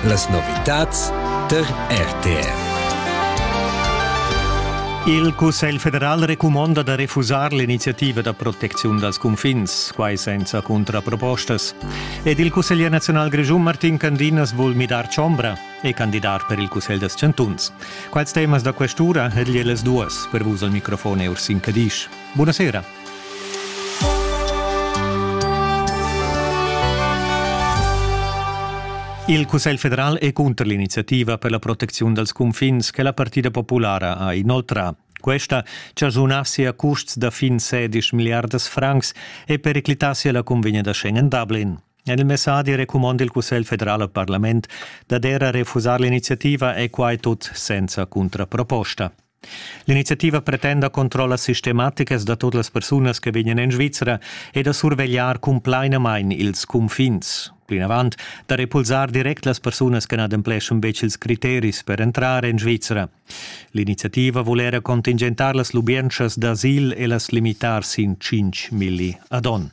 Las novitads tar RTR. Il Cussegl federal recumonda da refusar l'iniziativa da protecziun dals cunfins, quai senza cuntrapropostas. Ed il cusseglier nazional grischun Martin Candinas vul midar chombra e candidar per il Cussegl dels chantuns. Quals temas da questura e las duas per vus al microfon Ursin Cadisch. Buonasera. Il Cussegl federal è cunter l'iniziativa per la protecziun dals cunfins che la Partida populara ha inoltrà. Questa chasunassi a custs da fin 16 milliardas francs e periclitassi la convegna da Schengen Dublin. En il messadi recumanda il Cussegl federal al Parlament d'adere a refusar l'iniziativa e quai tut senza contraproposta. L'iniziativa pretenda controllas sistematicas da tut las persunas che vegnan en Svizra e da survegliar cumplainamain ils cunfins. Plinavant da repulsar direct las persunas che n'adempleschan betg ils criteris per entrar en Svizra. L'iniziativa vul era contingentar las lubientschas d'asil e las limitar sin 5 milli ad onn.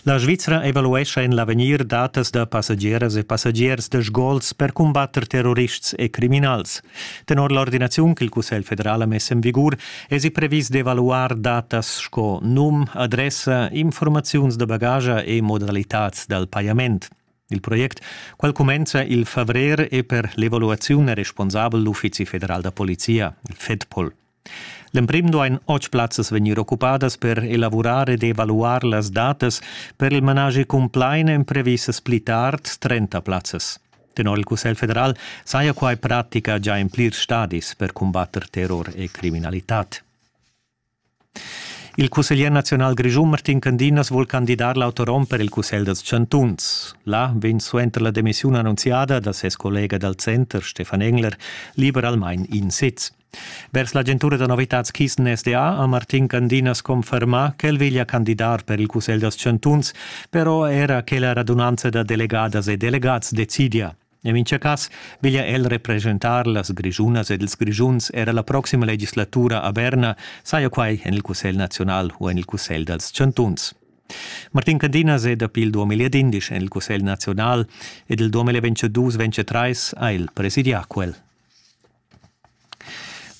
La Svizra evaluescha en l'avegnir datas da passageras e passagiers da sgols per cumbatter terrorists e criminals. Tenor l'ordinaziun ch'il Cussegl federal ha mess en vigur èsi previs d'evaluar datas sco num, adressa, informaziuns da bagage e modalitads dal pajament. Il project, quel cumenza il favrer, è per l'evaluaziun responsabel l'Uffizi federal da polizia, il FEDPOL. L'emprim duain otg plazzas vegnir occupadas per elavurar ed evaluar las datas per il managi cumplain èn previsas pli tard trenta plazzas. Tenor il Cussegl federal saja quai pratica già en plirs stadis per cumbatter terror e criminalitad. Il cusseglier nazional grischun Martin Candinas vul candidar l'autorom per il Cussegl dals chantuns. Là vegn suenter la demissiun annunziada da ses collega dal center Stefan Engler liberalmain in sez. Vers l'agentura da novitads Kisten SDA ha Martin Candinas confermà ch'el veglia candidar per il Cussegl dals chantuns, però era che la radunanza da delegadas e delegats decidia. En mintga cas veglia el represchentar las Grischunas ed ils Grischuns era la proxima legislatura a Berna, saja quai en il Cussegl naziunal u en il Cussegl dals chantuns. Martin Candinas è dapi il 2011 en il Cussegl naziunal ed il 2022-2023 ha el presidià quel.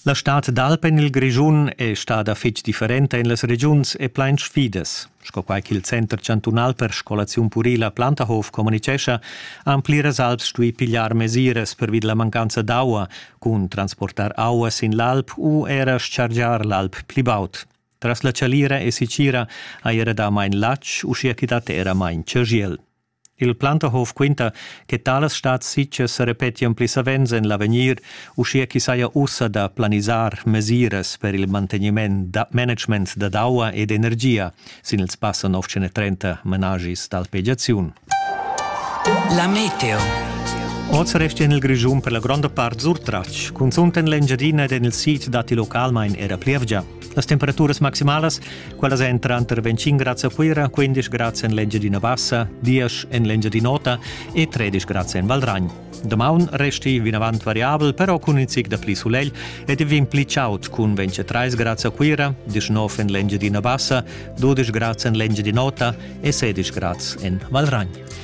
La stad d'alp en il Grischun è stada fitg differenta en las regiuns e plain sfidas. Sco quai ch'il Center chantunal per scolaziun purila Plantahof communitgescha, han pliras alps stuì pigliar mesiras pervi la mancanza d'aua, cun transportar aua sin l'alp u era chargiar l'alp pli baud. Tras la chalira e sicira ha era damain latg, uschia ch'i dat era main chagiel. Il Plantahof quinta che talas stads sitgas sa repetian pli savens en l'avegnir, uschia ch'i saja ussa da planisar mesiras per il mantegniment da management dad aua ed energia sin il spasso 930 menagis d'alpegiaziun. La meteo. Oz resta en il Grischun per la gronda part surtratg. Cunzunt en l'Engiadina ed en il sid datti localmain era plievgia. Las temperaturas maximalas, quellas èn tranter 25 grads a Cuira, 15 grads en l'Engiadina Bassa, 10 en l'Engiadin'Ota e 13 grads en Valragn. Damaun resti vinavant variabel, però cun in zic da pli sulegl ed il vin pli chaud cun 23 grads a Cuira, 19 en l'Engiadina Bassa, 12 grads en l'Engiadin'Ota e 16 grads en Valragn.